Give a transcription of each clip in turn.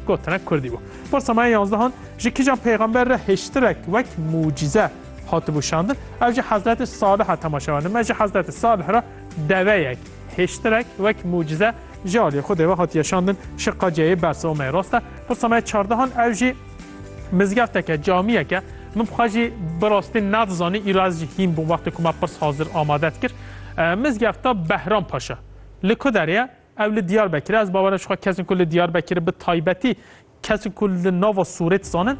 Gotinek Kurdî bû. Pirsa me ya yanzdehan, ji kîjan pêxember re hêştirek wek mucîze hatibû şandin? Ev ji Hezretê Salih a temaşe werdin. Me ji Hezretê Salih re deveyek, hêştirek wek mucîze ji aliyê Xwedê ve hatiye şandin şi qeceyê Bersomê. Rast e, pirsa me ya çardehan ew jî mizgefteke, camiyeke. Min bixwe jî bi rastî nedizanî îro ez jî hîn bûm wextê ku me pirs hazir amade dikir. Mizgefta Behram Paşa li ku derê ye? Ew li Diyarbekir e. Ez bawer e ji xwe kesên ku li Diyarbekir bi taybetî kesên ku li nava Sûrê dizanin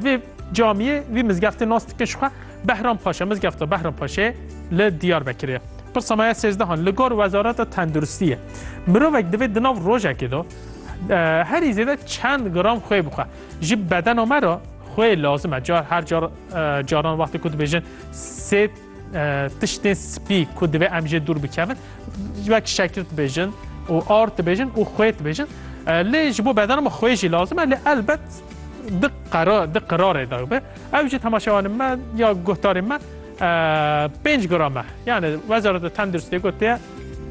vê camiyê vî mizgeftê nas dikin ji xwe Behram Paşa. Mizgefta Behram Paşê li Diyarbekirê ye. Pirsa me ya sêzdehan li gor Wezareta Tenduristî ye. Mirovek divê di nav rojekê de herî zêde çend gram xwê bixwe. Ji bedena me re xwê lazim e. Car her car caran wextê ku dibêjin sê Tiştên spî ku divê em jê dûr bikevin wek şekil dibêjin û ar dibêjin û xwê dibêjin. Lê ji bo bedana me xwê jî lazim e lê elbet di qera di qirarê da be. Ew jî temaşewanê me ya guhdarê me pênc grame. Yani wezareta tenduristê gotiye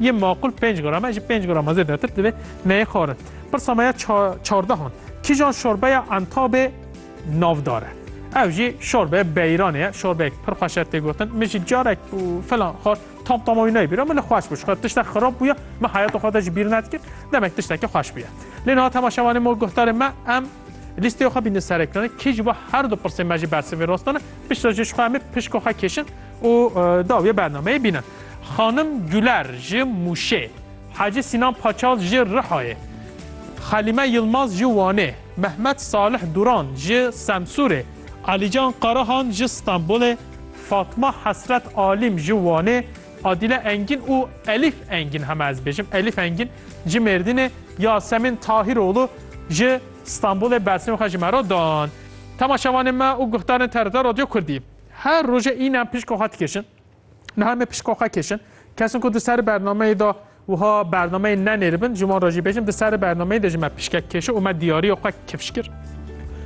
yê maqul pênc grame ji pênc grama zêdetir divê neyê xwarin. Pirsa me ya çardehan. Kîjan şorbeya entabê navdar e. Ev jî şorbe beyranê ye, şorbeyek pir xweş e tê gotin. Min jî carek û filan xwar, tam tama wî nayê bîra, min li xweş bû. Ji xwe tiştek xirab bûye, min heyata xwe de jî bîr nedikir. Demek tiştekî xweş bûye. Lê niha tema şevanê me û guhdarên me em lîsteya xwe bînin ser ekranê. Kê ji bo her du pirsên me jî bersivê rast dane, piştre jî ji xwe em ê pişka xwe kêşin û dawiyê bernameyê bînin. Xanim Guler ji Mûşê. Hacî Sînan Paçal ji Rihayê, Xelîme Yilmaz ji Wanê, Mehmet Salih Duran ji Semsûrê, Alîcan Karahan ji Stenbolê, Fatma Hesret Alîm ji Wanê, Adîle Engîn û Elîf Engîn, heme ez bêjim, Elîf Engîn ji Mêrdînê, Yasemîn Tahîroğlu ji Stenbolê bersînên xwe ji me re dan. Temaşevanên me û guhdarên TRT Radyo Kurdî, her roje înan pişka xwe dikêşin. Niha me pişko xwe kişin. Kesin ku di ser bernameyê de wiha bernameyê nenêribin ji wan re jî bêjim di ser bernameyê de ji me pişkek kişi û me diyariya xwe kifş kir.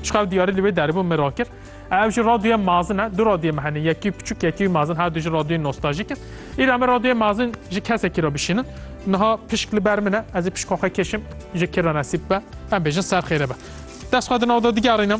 Ji xev diyarî li wê derbû min rakir. Ev jî radyoya mazin e. Du radyoyê me hene. Yekî piçûk yekî mazin her du jî radyoyên nostajîk in. Îra me radyoyê mazin ji kesekî re bişînin. Niha pişk li ber min e. Ez ê pişka xwe kişim ji kira nesîb be. Em bêjin ser xêre be. Dest xwe di nav de digerînim.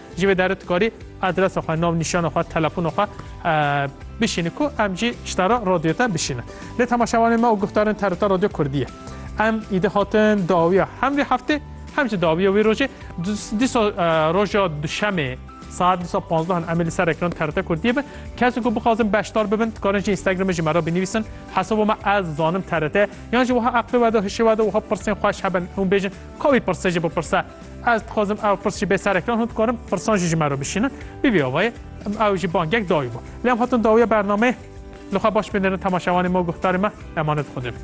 Ji vê derê tu karî adresa xwe, navnîşana xwe, telefona xwe bişînî ku em jî ji te re radyoya te bişînin. Lê temaşevanên me û guhdarên te rûta radyo kurdî ye. Em îdi hatin dawiya hem vê heftê hem jî dawiya wê rojê. Dîsa roja duşemê saet dîsa panzdehan em ê li ser ekran TRT Kurdiyê bin. Kesên ku bixwazin beşdar bibin dikarin ji Instagramê ji me re binivîsin hesaba me ez zanim TRT ye. Yan jî wiha eqlê wede, hişê wede wiha pirsên xweş hebin hûn bêjin ka wî pirse jî bipirse. Ez dixwazim ew pirs jî bê sereklan hûn dikarin pirsan jî ji me re bişînin. Bî vê avayê ew jî bangek dayî bû. Lê em hatin dawiya bernameyê li xwe baş bênêrin temaşevanê me û guhdarê me emanet Xwedê bin.